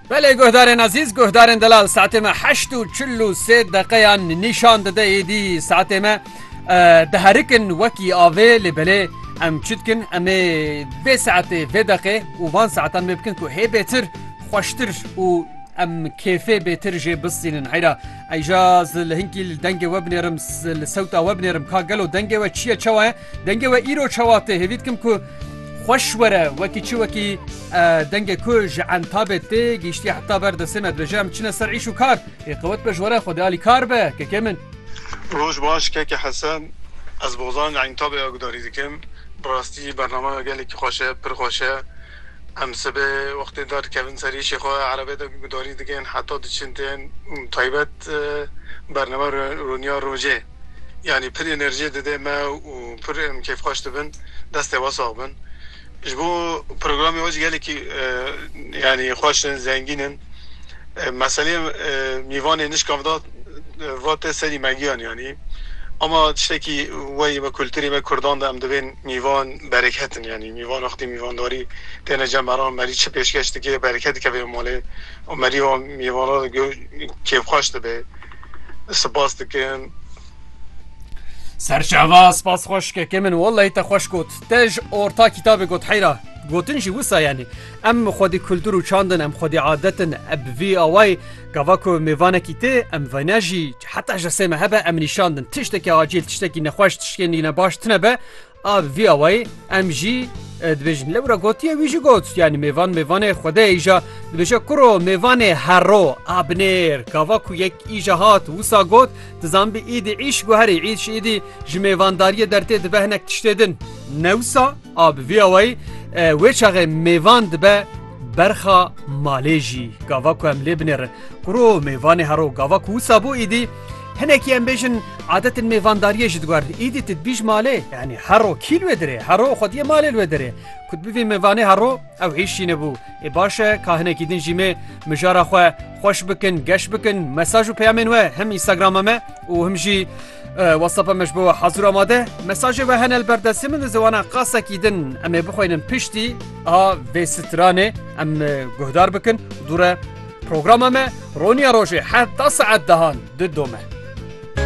Belê guhdarên ezîz, guhdarên delal saetê me heşt û çil û sê deqeyan nîşan dide êdî saetê me diherikin wekî avê lê belê em çi dikin em ê vê saetê vê deqê û van saetan wê bikin ku hê bêtir xweştir û em kêfê bêtir jê bistînin heyra eyja li hinkî dengê we binêrim li sewta we binêrim ka gelo dengê we çiye çawa ye Dengê we îro çawa tê hêvî dikim ku xweş were wekî çi wekî dengê ku ji entabê tê gîştiye heta ber destê me dibêje em çine ser îş û kar ê qewet be ji were xwedê alî kar be kekê min. Roj baş keke Hesen ez bozan li entabê ya gudarî dikim bi rastî bernamaya gelekî xweş e pir xweş e em sibê wextê dar dikevin ser îşê xwe erebê de gudarî dikin heta diçin tên taybet bername rûniya rojê. yanî pir enerjiyê dide me û pir em kêfxweş dibin. Destê we sax bin. Ji bo programê we jî gelekî yanî xweş in, zengîn in. Meseleyê mîvanê nişkam da va te serî me giyan yanî. Ama tiştekî weyî me kulturê me kurdan de em dibên mîvan bereket in yanî. Mîvan wextê mîvandarî têne cem heram merî çi pêşkeş dike bereket dikeve malê û merî wan mîvana de kêfxweş dibe. Spas dikim. Serçava spas xweşkekê min wellahî te xweş got. Te ji orta kîtabê got heyra. Gotin jî wisa yanî. Em xwedî kultur û çand in, em xwedî adet in. E bi vî awayî gava ku mêvanekî tê, em vayna jî heta ji sê me hebe em nîşandin. Tiştekî acîl, tiştekî nexweş, tiştekî ne baş tine be, A bi vî awayî em jî dibêjin lewra gotiye wî jî got yanî mêvan mêvanê xwedê îja dibêje kuro mêvanê herro a binêr gava ku yek îja hat wisa got tu zanbî îdî îş guherî îş îdî ji mêvandariyê dertê dibe hinek tiştê din newsa a bi vî awayî wê çaxê mêvan dibe berxa malê jî gava ku em lê binêrin kuro mêvanê herro gava ku wisa bû îdî Hinekî em bêjin adetên mêvandariyê ji diguerin. Îdî tu dibîj malê yanî hero kî li wê dirê hero xwediyê malê li wê dirê. Ku tu bivî mêvanê hero ew hîş jî nebû. Ê baş e ka hinekî din jî mê mijara xwe xweş bikin, geş bikin, mesaj û peyamên we him Instagrama me û him jî WhatsApp'a me ji bo we hezir amade. Mesajê we hene li ber destê min di ziwana qasekî din em ê bixwînin piştî a vê stranê em guhdar bikin dûre Programa me roniya rojê heta saet dehan didome.